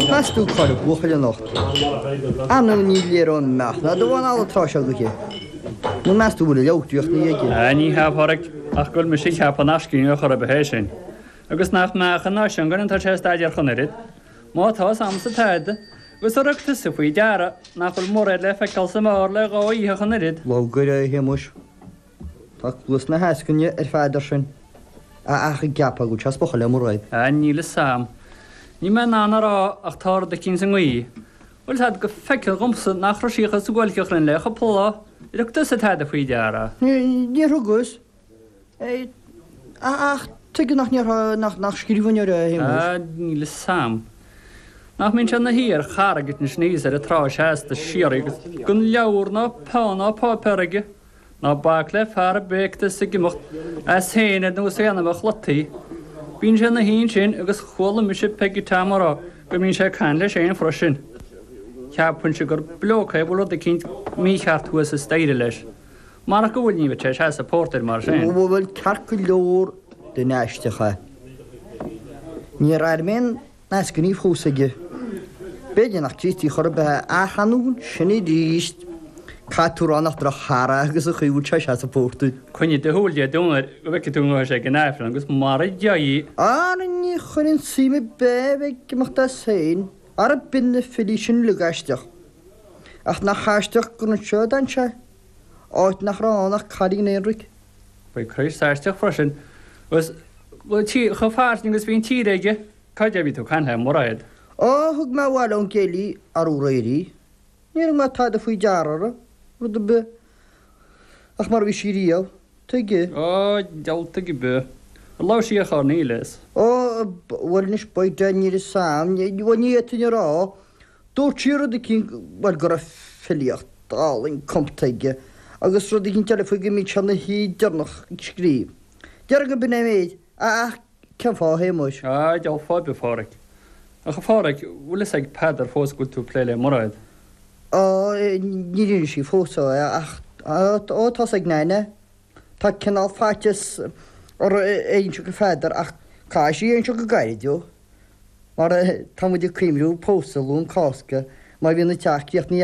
Meas tú cara buachaill anocht é, ar ndú ní léir ón meach ná do bhonn alla atá sé agat é, nó meas tú go bhfuil a leabhar draíochta aige? Á, ní hea, a Pháraic, ach go bhfuil mise ag ceapadh nach scríbhneoir chor ar bith é sin, agus nach mbeadh an nós sin againn atá sé a staidéar chun oiread. Má tá, is ansa atá agat, agus ar thug tusa faoi deara nach bhfuil mórán le feiceáil sa mBéarla ar dhóigh a dhíothaithe chun oiread. Labhraíodh a Shéamuis. Tá cluas na heascainne ar fad air sin, a ach ag ceapadh go bhfuil sé ag spochadh le Muraed. Á, níl fhios a'm. Níl mé in ann a rá ach tá rud eicínt sa ngaoth. Bhuel tá go feicthe dhomsa nach raibh sí chomh suáilceach linn le cupla lá is ar thug tú faoi deara. Níor thugas é ach tuige nach ndéarfá nach nach scríbhneoir é, a Shéamuis? Níl fhios a'm. Nach mbíonn sé 'na shuí ar charraigín thíos ar an trá seasta síoraí agus gan leabhar ná peann ná páipéar aige? Ná bac le fear a bhíonns ag imeacht as féin ar nós éanacha an chladaigh. Bíonn sé ina shuí ansin agus chuala mise Peggy Tam ag rá go mbíonn sé ag caint leis féin freisin. Cheapfainnse gur bloke é a bhfuil rud eicínt mícheart thuas sa staighre leis. Marach go bhfuil ní bheadh sé ag seasamh pórtair mar sin. An bhfuil ceart go leor den aistriúchán? Níor airigh mé an. Más gníomh thuas aige, b'fhéidir nach Críostaí chor ar bith é, ach ina ainneoin sin arís, caithfidh tú a rá nach drochfhear é agus an chaoi a bhfuil sé ag seasamh pórtair. Coinnigh do shúil Dé Domhnaigh go bhfeicfidh tú an ngabhfaidh sé ag an Aifreann agus mara dté. Ara ní chuirfinn suim ar bith é a bheith ag imeacht as féin, ara bíonn na filí sin uilig aisteach. Ach nach aisteach gur anseo a d'fhan sé, áit nach raibh ann ach cailín aonraic. By Christ is aisteach freisin, agus chomh fairsing agus bhí an tír aige, cáide ó bhí tú ag caint le Muraed? Ó, thug mé abhaile ón gcéilí arú aréir í. Níor thug mé tada faoi deara ar rud ar bith ach mar a bhí sí riamh, tuige? Ó, diabhal tuige ar bith. Ar labhair sí ar chor ar bith leis? Ó, bhuel anois, by dad, níl 'fhios a'm, ní fhéadfainn a rá. Dúirt sí rud eicínt, bhuel, go raibh filíocht álainn cumtha aige agus rud eicínt eile faoi go mbíonn sé ina shuí deireanach ag scríobh. Déarfainn go b'in é an méid, a ach cén fáth a Shéamuis? Á, dheamhan fáth ar bith, a Phádraic. Ach, a Phádraic, bhfuil fhios ag Peadar fós go bhfuil tú ag plé le Muraed? Á, níor inis sí fós dó é ach, ó, tá fhios ag Neain é. Tá cineál faitíos orthu é a inse go Pheadar ach caithfidh sí é a inse go gairid, ó. Mar tá muid ag cuimriú pósadh Luan Cásca, má bhíonn an teach críochnaithe